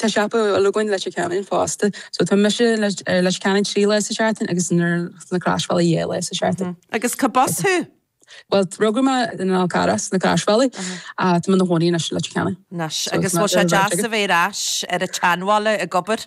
Tá siopa eile againn i Leitir Ceanainn, fosta. So, tá mise i Leitir Ceanainn trí lá sa tseachtain agus ins na Croisbhealaí dhá lá sa tseachtain. Agus cá b'as thú? Bhuel, rugadh mé ar an Fhál Carrach, sna Croisbhealaí, ach tá mé 'na chónaí anois i Leitir Ceanainn. Anois, agus bhfuil sé deas a bheith ar ais ar an tseanbhaile ag obair?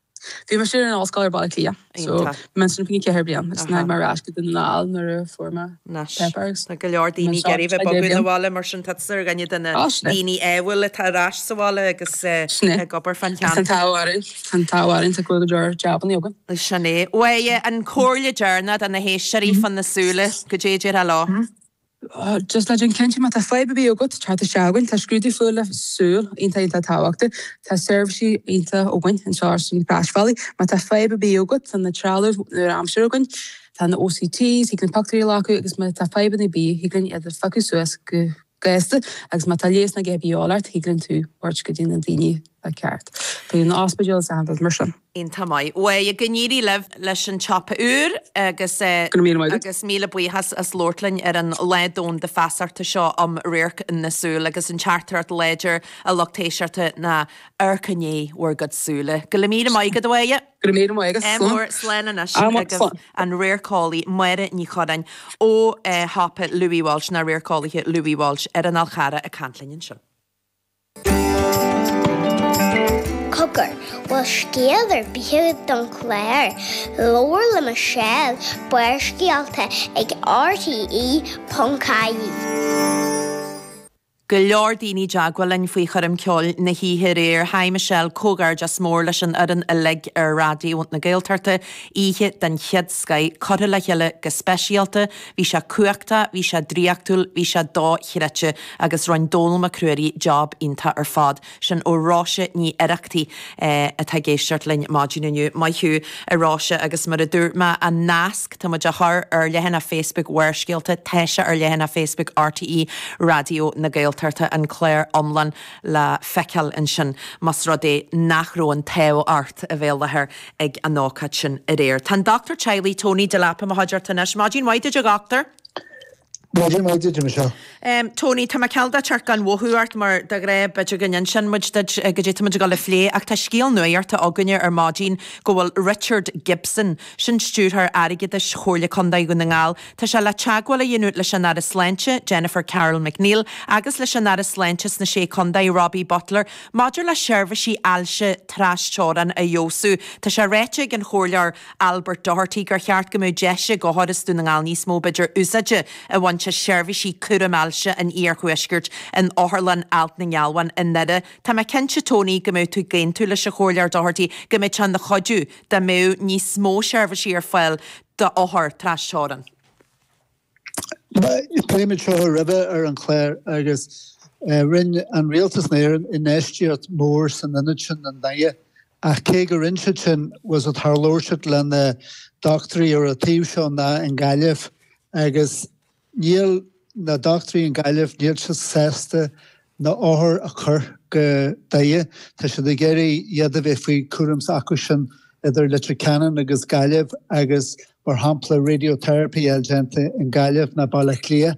Bhí mé ar an ollscoil i mBaile Átha Cliath. So, Iontach. bhí mé ansin fá choinne ceithre bliain. Is Aha. mé ar ais go Dún na nGall nuair a fuair mé Nice. pepper agus Tá go leor bhí mé daoine ag anseo iarraidh bheith ar feadh deich bogadh 'na bliain. bhaile mar sin tá tusa ar dhuine de na Á, sin é. daoine ádhúil atá ar ais sa bhaile agus eh, Sin é. ag obair fán Agus an cheantar. t-ádh orainn, tá an t-ádh orainn, tá go bhfuil go leor jabannaí againn. Is sin é. Bhuel, eh, an comhairle deireanach do na héisteoirí fá na súile, goidé a déarfá leo. Just le déanamh cinnte, má tá fadhb ar bith agat, tar isteach chugainn. Tá scrúdú fá na súile iontach iontach tábhachtach. Tá seirbhísí iontacha againn anseo ar na Croisbhealaí. Má tá fadhb ar bith agat, tá na trealamh nua-aimseartha againn. Tá na OCTs, thig linn pictiúirí a ghlacadh agus má tá fadhbanna ar bith, thig linn iad a phiocadh suas go gasta agus má tá leigheasanna ar bith a dhíobháil ort, thig linn tú thabhairt go dtí na daoine atá ceart. Go dtí an ospidéal is eile, rud mar sin. Iontach maith, a Mháire, go n-éirí libh leis an tsiopa úr agus Go raibh míle maith agat. agus míle buíochas as labhairt linn ar an Lá Domhanda Feasachta seo um Radharc na Súl agus an teachtaireacht láidir A Lucht Éisteachta ná amharcaigí i ndiaidh bhur gcuid súile. Go raibh míle maith agat, a Mháire. Go raibh míle maith agat. Slán. Ádh mór. Slán anois agus slán. an radharceolaí Máire Ní Churráin ó shiopa Louis Walsh, na radharceolaithe Louis Walsh ar an Fhál Carrach ag caint linn anseo. Cogar, bhfuil scéal ar bith agat don chlár? Labhair le Michelle, Barrscéalta ag RTE.ie. Go leor daoine i dteagmháil linn faoi choirm ceoil na hoíche aréir. Haigh Michelle, comhghairdeas mór leis an fhoireann uilig ar Raidió na Gaeltachta. Oíche den chéad scoith, curtha le chéile go speisialta. Bhí sé cumhachtach, bhí sé draíochtúil, bhí sé do-chreidte, agus rinn Dónall Mac Ruairí job iontach ar fad. Sin ó Róise Ní Oireachtaigh, atá ag éisteacht linn maidin inniu. Maith thú, a Róise, agus mar a dúirt mé, an nasc, tá muid á chur ar leathanach Facebook Bharrscéalta, tá sé ar leathanach Facebook RTÉ Raidió na Gaeltachta, an clár iomlán le feiceáil ansin, más rud é nach raibh an t-ádh ort a bheith i láthair. ag an ócáid sin aréir. Tá an dochtúir teaghlaigh Tony Delap i mo chuideachta anois. Maidin mhaith duit, a dhochtúir. Maidin mhaith duit, a Mhichelle. Tony, tá mé cineál de ag teacht gan mhothú ort, mar de ghnáth, b'fhéidir go n-inseann muid duit goidé tá muid ag dul a phlé, ach tá scéal nuaíochta againne ar maidin go bhfuil Richard Gibson, sin stiúrthóir airgeadais Chomhairle Contae Dhún na nGall, tá sé le teagmháil a dhéanamh leis an Aire Sláinte, Jennifer Carroll MacNeill, agus leis an Aire Sláinte sna Sé Contae, Robbie Butler, Maidir le seirbhísí ailse trasteorann a fheabhsú, tá sé ráite ag an Chomhairleoir Albert Doherty gur cheart go mbeadh deis ag othair as Dún na nGall níos mó b'fhéidir úsáide a bhaint as seirbhísí cúraim ailse an iarthuaiscirt in Otharlann Alt na nGealbhan i nDoire. Tá mé cinnte Tony go mbeidh tú ag aontú leis an Chomhairleoir Doherty go mbeadh sé ina chuidiú dá mbeadh níos mó seirbhísí ar fáil d'othair trasteorann. Phléigh muid seo roimhe ar an gclár agus rinne an rialtas in Éirinn infheistíocht mhór san ionad sin i nDoire ach cé go rinne siad sin was it tharlódh siad leis na dochtúirí ar an taobh seo ná i nGaillimh agus níl na dochtúirí i nGaillimh níl siad sásta na othair a chur go Doire. Tá siad ag iarraidh iad a bheith faoi chúram s'acu sin idir Leitir Ceanainn agus Gaillimh agus mar shampla radiotherapy uilig déanta in Gaillimh ná Baile Átha Cliath.